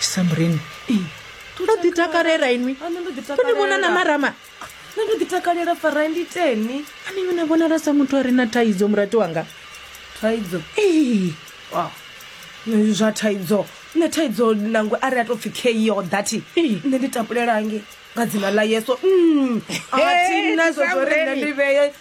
samrin to ḓi takalela inwi to ni vhona na marama nṋe ndo ḓi takalela fara ndi teni ani yona vhonala sa muthu a re na thaidzo murati wanga thaidzo ee Wow. Nṋe zwa thaidzo nṋe thaidzo nangwe a ri a tou pfhi keo dati Ee. nṋe ndi tapulelange nga dzina ḽa yeso Mm. a thi na zwo zwo ri nṋe Samreni. ndi vheye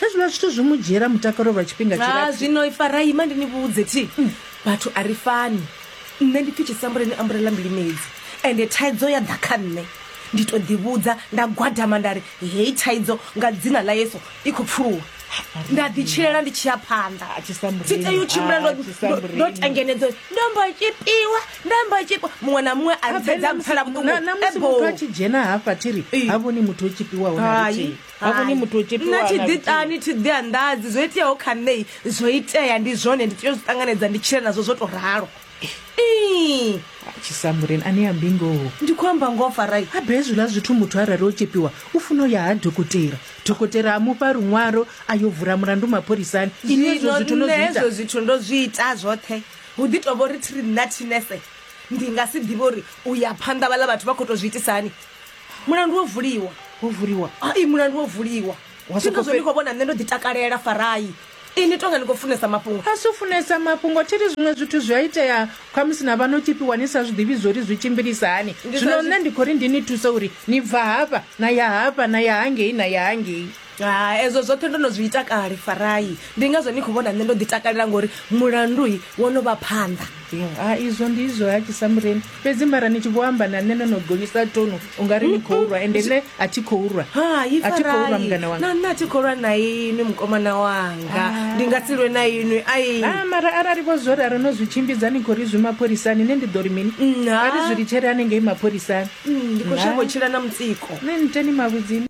Hezwiḽa zwithu zwi mu dzhiela mutakalo lwa tshifhinga Ha tshilapfu. zwino Ifarai, ima ndi ni vhudze thi. Vhathu a ri fani. Nṋe ndi pfi tshisambuleni ambulela mbilimedzi. Ende thaidzo ya ḓa kha nṋe. Ndi to ḓi vhudza nda gwadama nda ri heyi thaidzo nga dzina ḽa Yesu i khou pfuluwa. Nda ḓi tshilela ndi tshi ya phanḓa. Ah, Tshisambuleni, Thi tei u tshimbila ah, ndo- ndo- Tshisambuleni. ndo tengenedzo. Ndo mbo tshipiwa, ndo mbo tshipiwa. Muṅwe na muṅwe a ri thaidzo a mpfela vhuṱungu. Na- na musi Ebo. muthu a tshi dzhena hafha thiri Ee. ha vhoni muthu o tshipiwaho na Hai. luthihi ha vhoni muthu o tshepiwa nna thi na ḓi luthihi. ṱani thi ḓi anḓadzi zwo iteaho kha nṋei zwo itea ndi zwone ndi tea u zwi ṱanganedza ndi tshile nazwo zwo to ralo Ii, tshisambuleni ane ya mbingoho ndi khou amba ngoho farai habe hezwiḽa zwithu muthu arali o tshepiwa u funa u ya ha dokotela dokotela a mufha luṅwalo a yo vula mulandu mapholisani ini hezwo zwithu no nṋe zwi ita hezwo zwithu ndo zwi ita zwoṱhe hu ḓi tovha uri thiri nna thinese ndi nga si ḓivhe uri u ya phanḓa vhaḽa vhathu vha khou tou zwi itisa hani mulandu wo vuliwa wo vuliwa ai mulandu wo vuliwa zwino zwo ndi khou vhona nṋe ndo ḓi takalela farai ini tonga ni khou funesa mafhungo a si u funesa mafhungo thi ri zwiṅwe zwithu zwi a itea khamusi na vha no tshipiwa ni sa zwi ḓivhi zwo ri zwi tshimbilisa hani zwino nṋe ndi khou ri ndi ni thuse uri ni bva hafha na ya hafha na ya hangei na ya hangei Hai, ezwo zwoṱhe ndo no zwi ita kale, Farai. Ndi ngazwo ni khou vhona nṋe ndo ḓitakalela ngori mulandu wo no vha phanḓa. A izwo ndi izwo ha Tshisamureni. Fhedzi mara ni tshi vho amba na nṋe no no gonyisa tonu u nga ri ni khou rwa ende nṋe a thi khou rwa. Hai, A thi khou rwa Farai. mungana wanga. Na nṋe a thi khou lwa na inwi mukomana wanga. Ndi nga si lwe na inwi. Ai. Ah, mara arali vho zwo ralo no zwi tshimbidza ni khou ri zwi mapholisani nṋe ndi ḓo ri mini? Nṋa. Vha ri zwi litshele hanengei mapholisani. Mm, Ndi khou shavha u tshila na mutsiko. Nṋe niteni mavhudzini.